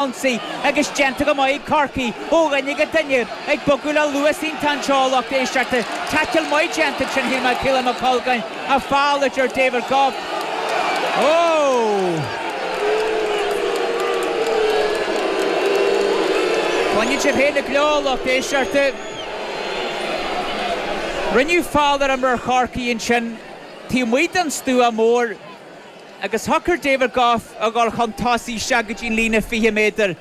ionsaí agus déanta go maith ag Corcaigh ó dhuine go duine, ag bogadh le luas iontach anseo ó lucht éisteachta. Taicil maith déanta ansin, shíl mé, ag Caolan McColgan ach feall, a deir David Gough. Ó! Cluineann sibh féin an gleo, a lucht éisteachta. Rinneadh feall ar imreoir Chorcaí ansin taobh amuigh den stua mór. agus shocair David Gough a dhul chun tosaigh isteach go dtí an líne 20 méadar.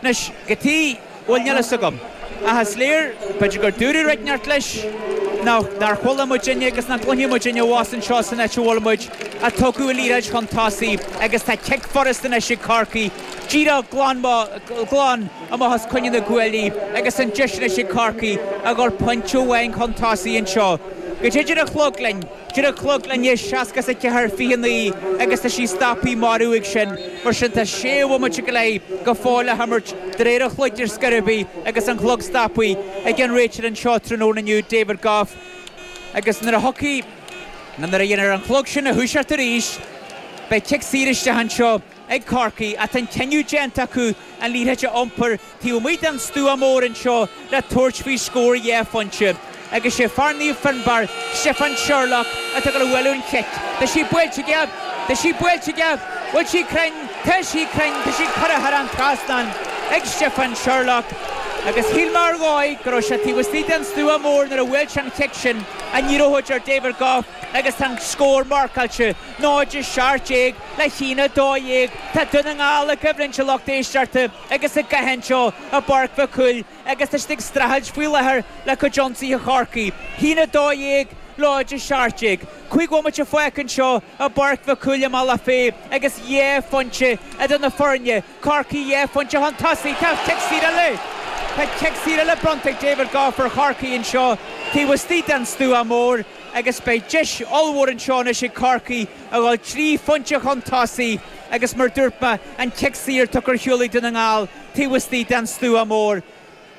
Anois, cad chuige, bhuel, níl fhios agam. Ach is léir, b'fhéidir gur dúradh rud inteacht leis, nó nár chuala muidinne agus nach gcluinfeadh muidinne abhus anseo san áit a bhfuil muid, ach tugadh an liathróid chun tosaigh agus tá cic furasta anois ag Corcaigh, díreach glan mo, glan amach os coinne na gcuaillí agus an deis anois ag Corcaigh a dhul pointe amháin chun tosaigh anseo. Caidé a deir an clog linn? Deir an clog linn 64, 29 agus tá sí stopthaí mar uaidh sin. Mar sin tá sé bhomaite go leith go fóill le himirt de réir an chloig ar scor ar bith agus an clog stopthaí ag an réiteoir anseo tráthnóna inniu, David Gough. Agus nuair a thiocfaidh, nó nuair a dhéanfar an clog sin a thoiseacht arís, beidh cic saor isteach anseo. ag Corcaigh ach tá an cinneadh déanta acu an liathróid a iompar taobh amuigh den stua mór anseo le tabhairt faoi scór dhá phointe agus sé fear Naomh Fionnbarr, Stiofán Sherlock, atá ag bualadh an chic. Tá sí buailte aige! Tá sí buailte aige! Bhfuil sí cruinn? Tá sí cruinn! Tá sí curtha thar an trasnán ag Stiofán Sherlock agus shíl mé ar dhóigh go raibh sé taobh istigh den stua mór nuair a bhuail sé an chic sin, ach ní raibh, a deir David Gough agus tá an scór marcáilte. 0 is 17 le 1 12 tá Dún na nGall i gcoimhlint a lucht éisteachta agus i gcath anseo i bPáirc Mhic Cumhaill agus tá siad ag streachailt faoi láthair le cuid ionsaithe Chorcaí. 1 12 0 is 17 5 bhomaite fágtha anseo i bPáirc Mhic Cumhaill i mBealach Féich agus 2 phointe idir na foirne Corcaigh dhá phointe chun tosaigh tá cic saor eile. Tá cic saor eile bronnta ag David Gough ar Chorcaigh anseo taobh istigh den stua mór agus beidh deis ollmhór anseo anois ag Corcaigh a dhul trí phointe chun tosaigh agus mar dúirt mé an cic saor tugtha ar shiúl ag Dún na nGall taobh istigh den stua mór.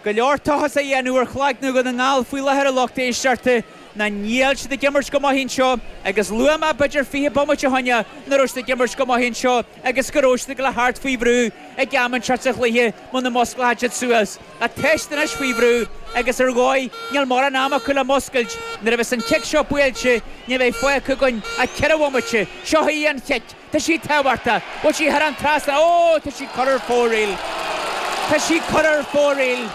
go leor tochas a dhéanamh ar chloigne Dhún na nGall faoi láthair a lucht éisteachta nó níl siad ag imirt go maith anseo agus luaigh mé b'fhéidir fiche bomaite ó shin nach raibh siad ag imirt go maith anseo agus go raibh siad ag dul a theacht faoi bhrú ag am inteacht sa chluiche muna musclóchadh siad suas ach tá siad anois faoi bhrú agus ar dhóigh níl mórán am acu le muscailt nuair a bheas an cic seo buailte ní bheidh fágtha againn ach ceithre bhomaite seo í an chic Tá sí tábhachtach. Bhfuil sí thar an trasnán? Ó, tá sí curtha ar fóraoil. Tá sí curtha ar fóraoil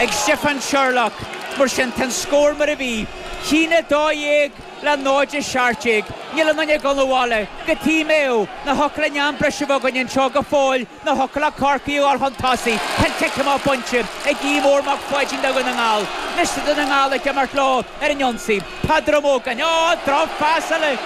ag Stiofán Sherlock. Mar sin, tá an scór mar a bhí. 1 12 le 0 17. Níl aon duine ag dul abhaile go T-Mao. Nó thiocfadh linn am breise a bheith againn anseo go fóill. Na hOclaíoch, Corcaigh a dhul chun tosaigh, ceann cic amach bainte ag Aodh Mór Mac Pháidín do Dhún na nGall. Anois tá Dún na nGall ag imirt leo ar an ionsaí. Peadar Ó Mógáin. Ó! Drochphas eile!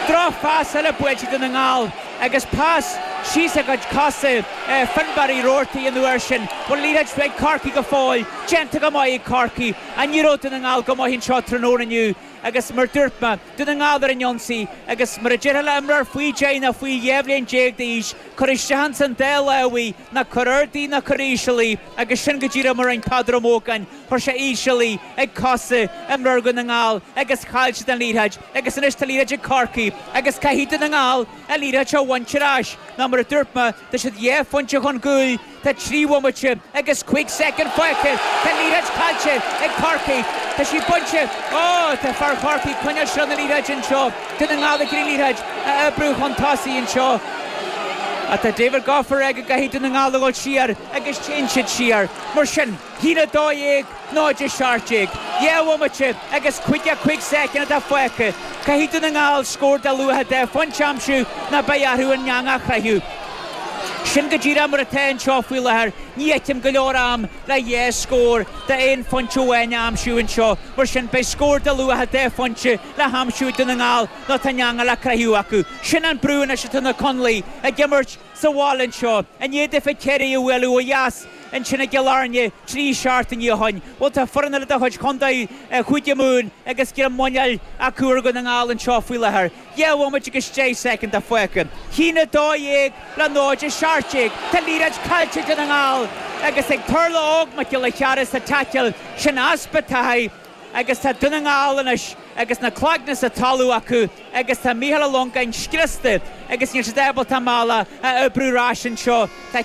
Drochphas eile buailte ag Dún na nGall agus pas síos ag cuid cosa Fionnbarr Uí Robhartaigh an uair sin. Bhuel, liathróid ag Corcaigh go fóill. Déanta go maith ag Corcaigh. An éireoidh Dún na nGall go maith anseo tráthnóna inniu? agus mar dúirt mé, Dún na nGall ar an ionsaí, agus mar a déarfá le himreoir faoi deich nó faoi dhá bhliain déag d'aois, cuir isteach ins an dá láimh í, ná cuir ard í ná cuir íseal í, agus sin go díreach mar a rinne Peadar Ó Mógáin, chuir sé íseal í, ag cosa imreoir Dhún na nGall, agus chaill siad an liathróid, agus anois tá liathróid ag Corcaigh, agus caithfidh Dún na nGall an liathróid seo a bhaint ar ais, nó mar a dúirt mé, Tá siad dhá phointe chun cúil, tá trí bhomaite agus cúig soicind fágtha. Tá liathróid caillte ag Corcaigh. Tá sí bainte. Ó! Tá fear Chorcaí ag coinneáil seilbh na liathróide anseo. Dún na nGall ag iarraidh liathróid a oibriú chun tosaigh anseo. Ach tá David Gough ag rá go gcaithfidh Dún na nGall a dhul siar agus téann siad siar mar sin. 1 12, 0 17. Dhá bhomaite agus caoga cúig soicind atá fágtha. Caithfidh Dún na nGall scór de luach dhá phointe a aimsiú nó beidh orthu an eangach a chroitheadh. Sin go díreach mar atá anseo faoi láthair. Ní fheicim go leor am le dhá scór d'aon phointe amháin a aimsiú anseo. Mar sin, beidh scór de luach dhá phointe le haimsiú ag Dún na nGall nó tá an eangach le croitheadh acu. Sin an brú anois atá na Conallaigh ag imirt. sa bhaile anseo, i ndiaidh daofa Ciarraí a bhualadh ó dheas, ansin i gCill Airne, trí seachtaine ó shin. Bhuel, tá foireann eile de chuid chontae Chúige Mumhan agus greim muineáil acu ar Dhún na nGall anseo faoi láthair. Dhá bhomaite agus deich soicind atá fágtha. A haon a dó dhéag le 0 17. Tá liathróid caillte ag Dún na nGall agus ag Tarlach Óg Mac Giolla Chearra sa taicil sin. Easpa taithí. agus tá Dún na nGall anois agus na cloigne sa talamh acu agus tá Micheál Ó Longáin scriosta agus níl siad ábalta a mbealach a oibriú ar ais anseo. Tá.